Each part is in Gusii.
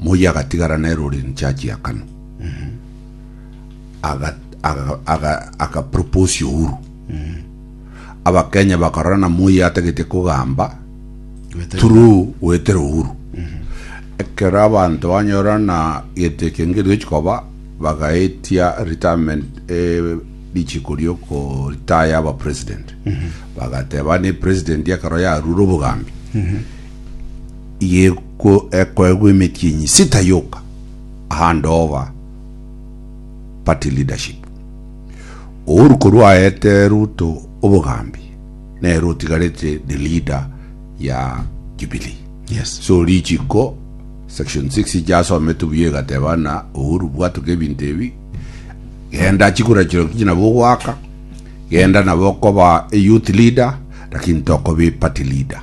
Moi agatigara nere ore in charge ya Kanu. Aga aga aga aka propose Uhuru. Abakenya bakarora na Moi atagete kogamba Wetera. through wetera Uhuru. Ekero abanto banyora na gete kenge riochi koba bagaetia retirement eh, richiko rioko retire aba president. Bagateba ne president ekero yarure obogambi. ekoegwa emetienyi sita yoka ahande oba party leadership. Uhuru korwa aete Ruto obogambi nere otigarete the leader ya Jubilee. Yes. So richiko section 6 ijasometwe buya igateba na Uhuru bwatuka ebinto ebi genda chikura chiroki nabo ogwaka genda nabo okoba a youth leader lakini tokoba party leader.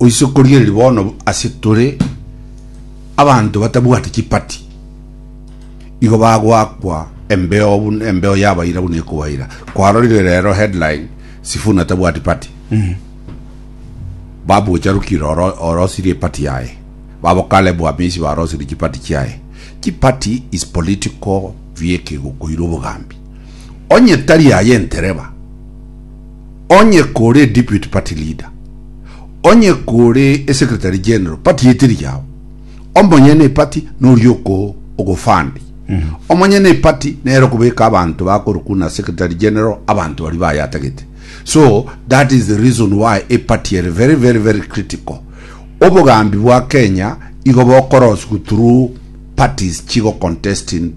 Oise korigereria bono ase tore abanto batabwati chipati, igo bagoakwa embeo buna embeo yabaira buna ekobaira. Kwarorire rero headline Sifuna tabwati party. Babocharukire oro orosirie epati yaye. Babo Caleb Wamisi barosirie chipati chiaye. Chipati is political vieki gokoira obogambi. Onye tari aye entereba. Onye kore Deputy Party Leader, onye kore eSecretary General, party eteri yao. Omonyene eparty noria oko ogofund. Omonyene eparty nere okobeka abanto bakorwa kuna Secretary General abanto baria bayatagete. So that is the reason why eparty ere very very very critical. Obogambi bwa Kenya igo bokoroswa through parties chigo contest in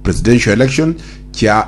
presidential election chia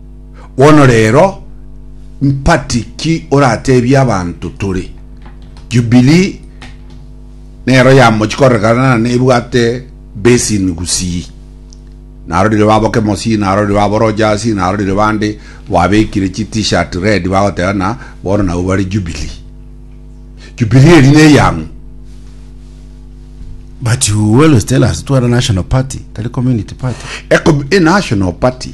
Bono rero, mpati ki orateebie abanto tore? Jubilii nero yamochia korekana na nebwate basin gusii. Narorire baboke mosii, narorire baboroche asii, narorire bande babekire chi t-shirt red bagoteba na bono nabwo bare Jubilii. Jubilii eri neyang'u? But you always tell us tware national party tari community party. Ecom- e national party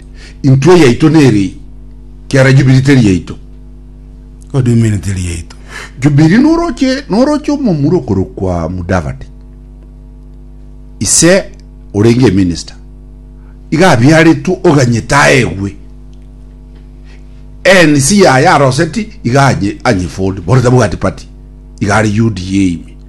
Intwe yaito nere eye, kiara Jubili teri yaito. Godwimini teri yaito. Jubili noroche noroche omomura okorokwa Mudavadi, ise orenge eminista, iga abiaretwe oganyete aegwe. ANC yaye aroseti iga anye anye Ford, borete bwati party, iga are UDA ime.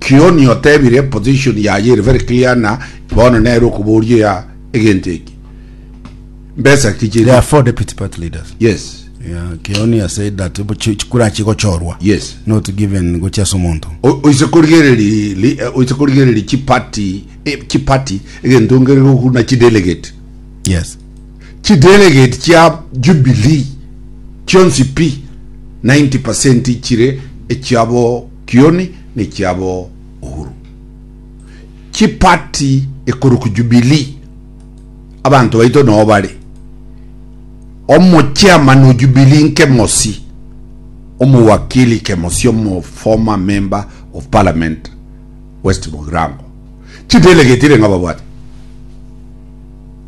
Kioni otebire position yaye ere very clear na bono nere okoboria ya egento eki mbesa ki chiri There are four deputy party leaders. yes Yeah, Kioni has said that bo- chi- chikura chigochorwa. Yes. Not given gochia ase omonto. O- oise korigereri li- eh, oise korigereri chipati eh, chipati egento ngere gokuna chidelegate Yes. chidelegate chia jubilee chionsi pi 90 chire echiabo Kioni nekiabo Uhuru. Chi party ekorokwa Jubilee abanto baito noo bare. Omo chairman o Jubilee nkemosi omo wakili kemosi omo former member of parliament West Mugirango. Chi delegates irenga babwate.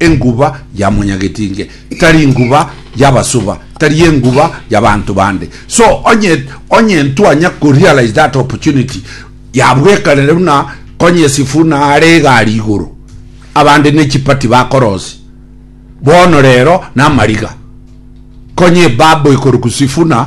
Enguba ya monyagetinge tari nguba y'abasuba, tari enguba y'abanto bande. So onye onye ntwanya ko realize that opportunity ya bwekanere buna konye Sifuna are egari igoro abande ne chipati bakorosi bono rero na mariga konye babo ikoruku Sifuna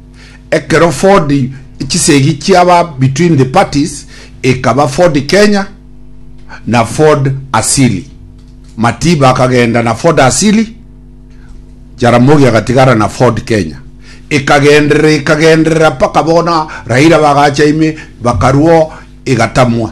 Ekero Ford chisegi chiaba between the parties ekaba Ford Kenya na Ford Asili. Matiba akagenda na Ford Asili, Jaramogi agatigara na Ford Kenya. Ekagenderera ekagenderera mpaka bono Raila bagacha ime bakarwo egatamwa.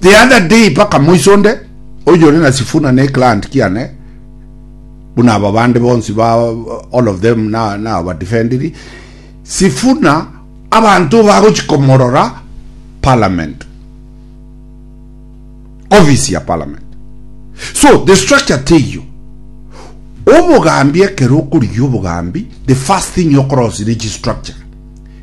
The other day paka moiso onde oyore na Sifuna ne client kiane buna aba bande bonsi ba all of them na na aba defendiri Sifuna abanto bagochi komorora parliament office ya parliament so the structure teyo obogambi ekero okorigia obogambi the first thing you cross rich structure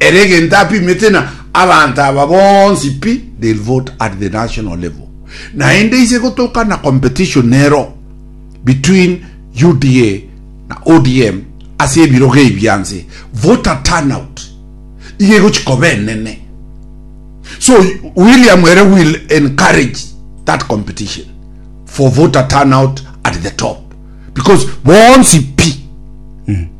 Ere egento apimete na abanto aba bonsi pi they'll vote at the national level. Naende ise gotoka na competition nero between UDA na ODM ase ebirogo ebi bianse voter turnout iga egochi koba enene so William ere will encourage that competition for voter turnout at the top because bonsi pi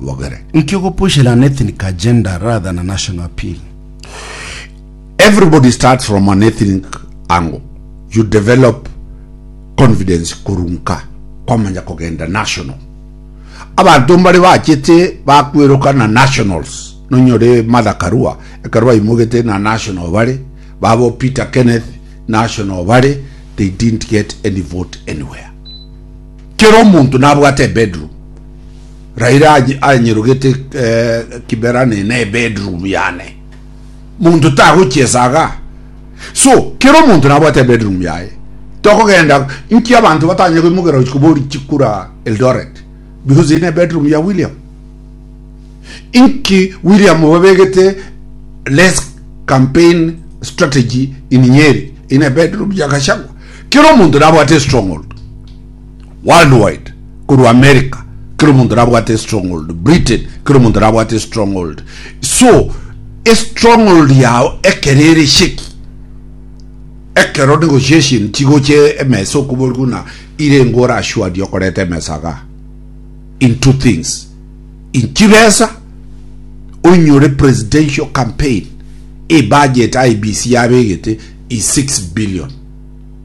bogere. Nki ogopushera an ethnic agenda rather than a national appeal? Everybody starts from an ethnic angle, you develop confidence korwa nka kwamanya kogenda national. Abanto mbare bachete bakweroka na nationals, nonyore Martha Karua ekero baimogete na national bare, babo Peter Kenneth national bare, they didn't get any vote anywhere. Kera omonto nabwate ebedroom. Raira aye anyerogete Kiberani ne bedroom yane. Monto tagochia esaga. So, kera omonto nabwate ebedroom yaye. Tokogenda nki abanto batanya koimogera gochia kobori chikura Eldoret because eye ne bedroom ya William. Inki William babegete less campaign strategy in Nyeri eye ne bedroom ya Gachagua. Kera omonto nabwate stronghold. Worldwide, korwa America, kera omonto nabwate estronghold, Britain, kera omonto nabwate estronghold. So, estronghold yao ekero ere sheki, ekero negotiation chigocha emesa okoborigwe buna ire engo orashuadie okoreta emesa iga, in two things, in chibesa, oinyore presidential campaign, ebudget IEBC yabegete is six billion.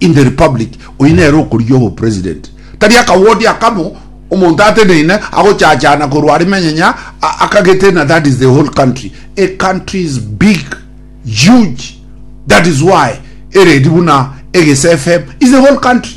In the republic oyio nere okorigia obo president tari aka ward aka mo omonto ateneine agochachana korwa are menyenya akagete na that is the whole country a country is big huge that is why eredi buna egese fm is the whole country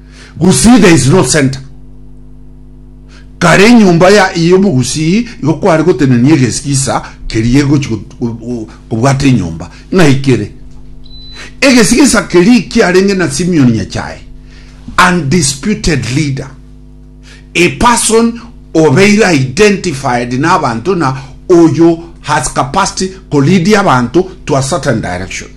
Gusii there is no center. Kare enyomba ya y'omogusii igo kware gotenenia egesigisa keria egochi kobwata enyomba ng'ai kere. Egesigisa keria kiarenge na Simeon Nyachae, undisputed leader, a person obeire identified n'abanto na oyo has capacity ko lead abanto to a certain direction.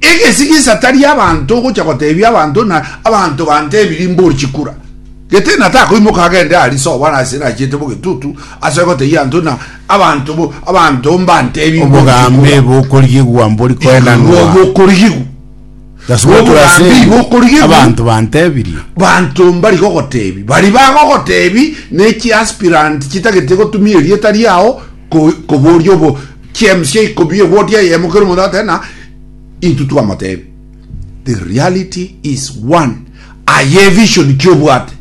Egesigisa tari abanto ogocha gotebia abanto na abanto bantebiri mbori chikura. Gete na takoimoka agende ari soba na ase nachiete bogetutu ase goteyia anto na abanto bo abanto mbantebi obogambi bokorigigwa mbori koenanwa bokorigigwa obogambi bokorigigwa abanto bantebirie banto mbari gogotebi bari bagogotebi ne chi aspirant chitagete gotumia erieta riao koboria obo James ya ikomi eboti eyemo kero omonto agoteba na intwe twamotebia the reality is one aye vision ki obwate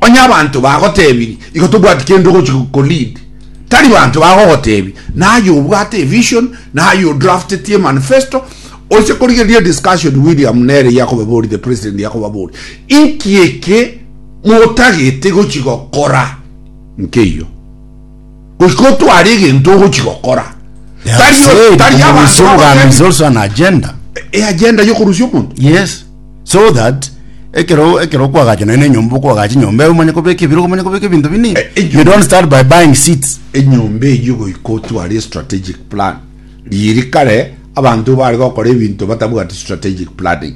onye abanto bagotebiri igo tobwati kende ogochi ko lead tari banto bagogotebi naye obwate vision naye odraftetie manifesto oise korigeria discussion William nere yakobabori the president yakobabori inki eke motagete gochi gokora nkeiyo goika otware egento ogochi gokora. Tari tari abanto agenda e agenda yo kurusia omonto. Yes. So that ekero ekero kwagacha na enyomba okwagacha enyomba eyo omanye kobeka ebiro omanye kobeka ebinto bini. Eh, eh, you don't start by buying seats. Enyomba eyo goika otware strategic plan. Riri kare abanto bare gokora ebinto batabwati strategic planning.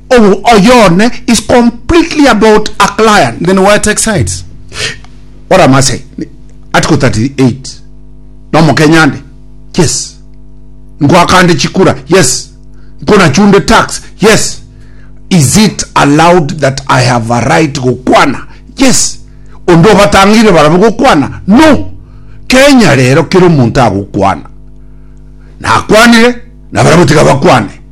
Obo oyo one is completely about a client then why take sides? Ore Amasai article 38 no Mokenyande yes nkwakande chikura yes nkonachunde tax yes is it allowed that I have a right gokwana yes onde obatangire barabo gokwana no Kenya rero kero omonto agokwana nakwanire na barabo tiga bakwane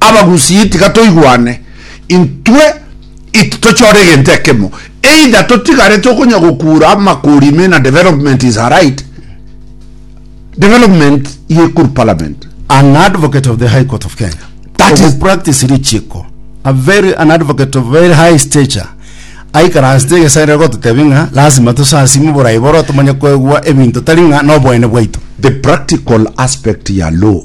Abagusii tiga toigwane, intwe ititochore egento ekemo, either totigarete okonya gokura amakori ime na development is aright, development ye ekuru parliament. An advocate of the High Court of Kenya. That is practice richiko. A very an advocate of very high stature. Aikaransete egesaerero gototebia ng'a lazima tosasime oborai boro tomanye koegwa ebinto tari ng'a noboene bwaito. The practical aspect ya law.